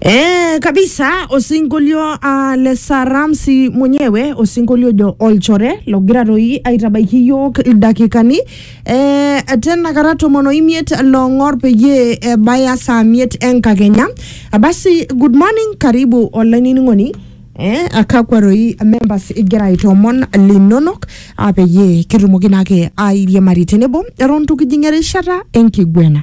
Eh, kabisa osinkolio uh, le saramsi mwenyewe osinkolio jo olchore logira toi aitabaiki yiok ildakikani eh, tena kata tomon oimiet long'or peyie ebaya saa miet enkakenya Ah, basi good morning karibu olainining'oni eh, akakwa toi members igira aitoomon linonok ah, peyie kitumoki naake airiamari tenebo eton tukijing erishata enkiguena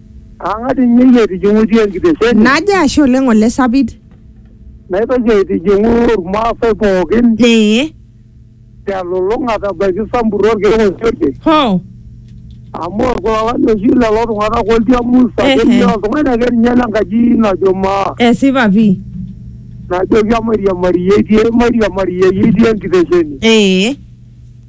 Ang'as ninye iyie aitijing'utie enkitesheni Naje ashe oleng ole sapit. naitoki aitijing'u Irmaasai pookin Ee. telulung'ata ebaiki Sambur orkeek osiote Ho. amu orkulalani oshi lelo tung'anak oltiamus Ehe. akeyie oltung'ani ake ninye lenkaji najo maa Esipa pii. najoki emairiamari iyie itii emairiamari iyie itii enkitesheni. Ee.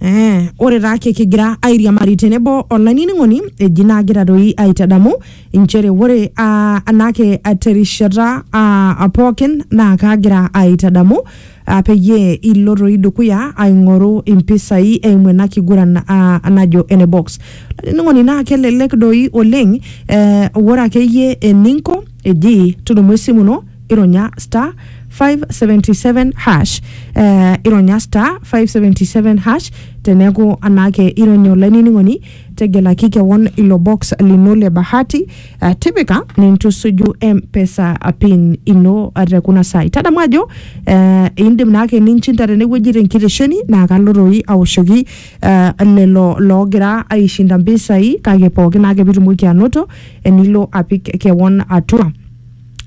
Eh, ore taa ake kigira airiamari tenebo olainining'oni eji naagira doi aitadamu inchere ore ah, anaake ah, terishata ah, pookin naa kaagira aitadamu ah, peyie ilo doi dukuya aing'oru impisai eimu ena kiguran ah, najo ene box olainining'oni naa kelelek doi oleng eh, ore akeyie eninko eji tudumu esimu ino ironya star 577 hash eh, ironya star 577 hash teneeku anaake ironya olainining'oni tegelaki kewon ilo box lino le bahati eh, tipika nintusuju mpesa pin ino eh, te kuna saai tadamu ajo eh, indim naake ninchinda tenewueji tenkitesheni naa kalo toi awoshoki eh, lelo loogira aishinda mpisai kake pookin naake pitumoki anoto enilo apik kewon atua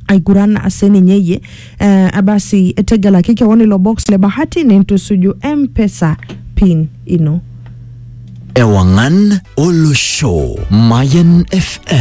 aiguran sininye iyie eh, basi tegelaki kewon ilo box le bahati nintusuju mpesa pin ino Ewangan Olosho. Mayan FM.